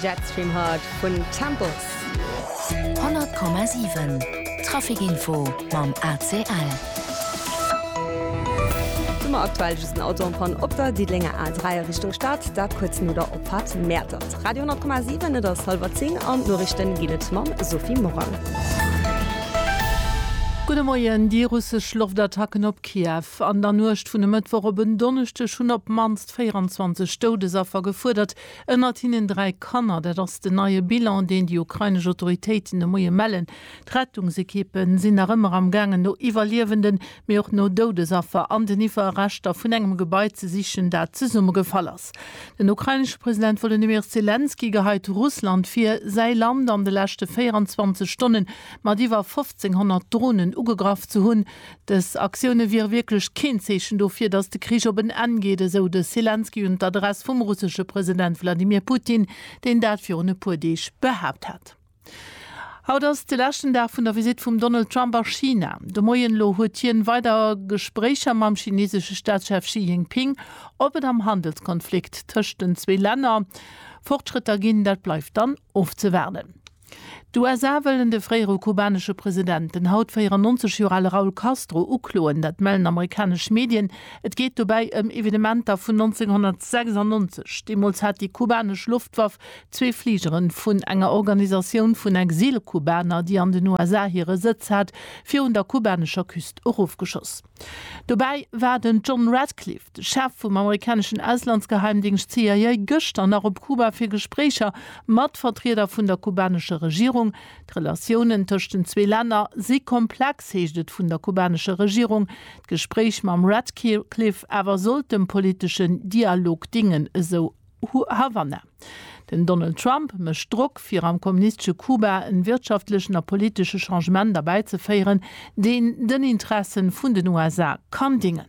Jetstream Heart vun Temples. 100,7 Trafic Info mam ACL. Do mer aktuell just en Auto en Panne op der Diddelenger A3 a Richtung Stad, dat kuerz no der Opfahrt Mäertert. Radio 100,7, et ass hallwer 10 an d'Norichten ginn et mam Sophie Morang. Gudde Moien, Déi russesch Loftattacken op Kiew an der Nuecht vun e Mëttwoch op en Donneschdeg hunn op d'mannst Hauptstadt 24 Doudesaffer gefuerdert, ënnert hinnen dräi Kanner. Dat ass den neie Bilan, deen déi ukrainesch Autoritéiten de Moie mellen. D'Rettungsekippe sinn nach ëmmer am gaangen no Iwwerliewenden, mee och no Doudesaffer an den Iwwerreschter vun engem Gebai ze sichen, dat zesummegefall ass. Den ukrainesche President Wolodymyr Selenskyj geheit Russland vir, säi Land an de leschte 24 Stonne mat iwwer 1.500 Dronen ugegraff ze hunn. Dës Aktioune wiere wierklech keen Zeechen dofir, datt de Krich op en Enn geet, esou de Selenskyj un d'Adress vum russesche President Wladimir Putin, deen dat virun e puer Deeg behaapt hat. Haut ass de leschten Dag vun der Visitt vum Donald Trump a China. De Moien elo huet hien weider Gespréicher mam chinesesche Staatschef Xi Jinping. Ob et am Handelskonflikt tëscht den zwee Länner Fortschrëtter ginn, dat bleift dann ofzewaarden. D'USA wëllen de fréiere kubanesche President, den haut 94 Joer ale Raul Castro, ukloen. Dat mellen amerikanesch Medien. Et geet dobäi ëm Evenementer vun 1996. Deemools hat déi kubanesch Loftwaff zwee Fligere vun enger Organisatioun vun Exil-Kubaner, déi an den USA hire Sëtz hat, virun der kubanescher Küst erofgeschoss. Dobäi war den John Ratcliffe, de Chef vum amerikaneschen Auslandsgeheimdingscht CIA, gëschter nach op Kuba fir Gespréicher mat Vertrieder vun der kubanescher Regierung. D'Relatiounen tëscht den zwee Länner si komplex, heescht et vun der kubanescher Regierung. D'Gespréich mam Ratcliffe awer sollt dem politeschen Dialog dingen, esou Havanna. Den Donald Trump mécht Drock fir am kommunistesche Kuba en wirtschaftlechen a politesche Changement erbäizeféieren, deen den Interessen vun den USA kann dingen.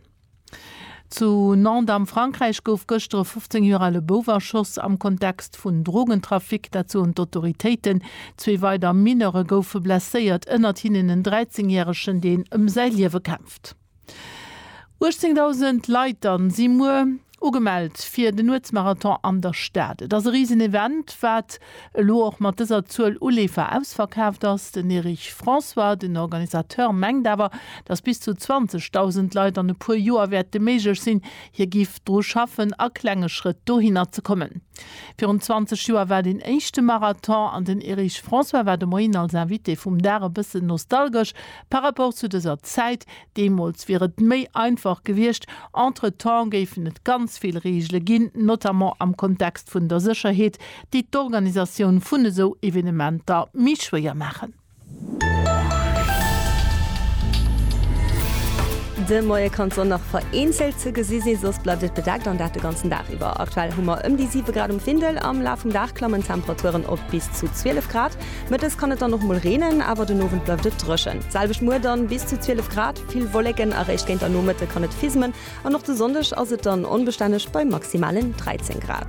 Zu Nantes am Frankräich gouf gëschter e 15 Joer ale Bouf erschoss am Kontext vun Drogentrafic, dat soen d'Autoritéiten. Zwee weider Mineure goufe blesséiert, ënnert hinnen en 13 järegen, deen ëm säi Liewe kämpft. 18.000 Leit dann si muer ugemellt fir den Nuetsmarathon an der Stad. Et ass e riesen Event, wat elo och mat dëser Zuel u Leefer ausverkaaft ass. Den Erich François, den Organisateur, mengt awer, datt bis zu 20.000 Leit an e puer Joer wäerte méiglech sinn. Hie giff dru schaffen a klenge Schrëtt dohinner ze kommen. Virun 20 Joer war deen éischte Marathon an den Erich François war de Moien als Invité vum Dag e bëssen nostalgesch, Par rapport zu dëser Zäit deemools wier et méi einfach gewiescht. Entretemps géifen et ganz vill Reegele ginn, notamment am Kontext vun der Sécherheet, déi d'Organisatioun vun esou Evenementer méi schwéier maachen. De Moie kann d'Sonn nach vereenzelt ze gesi sinn, soss bleift et bedeckt an dat de ganzen Dag iwwer. Aktuell hu mer ëm déi 7 Grad um Findel. Am Laf vum Dag klammen d'Temperaturen op bis zu 12 Grad. Mëttes kann et dann och mol reenen, awer den Owend bleift et dréchen. D'selwecht muer dann, bis zu 12 Grad, vill Wolleken a réischt géint der Nomëtte kann et fismen an och de Sonndeg ass et dann onbestänneg bei maximalen 13 Grad.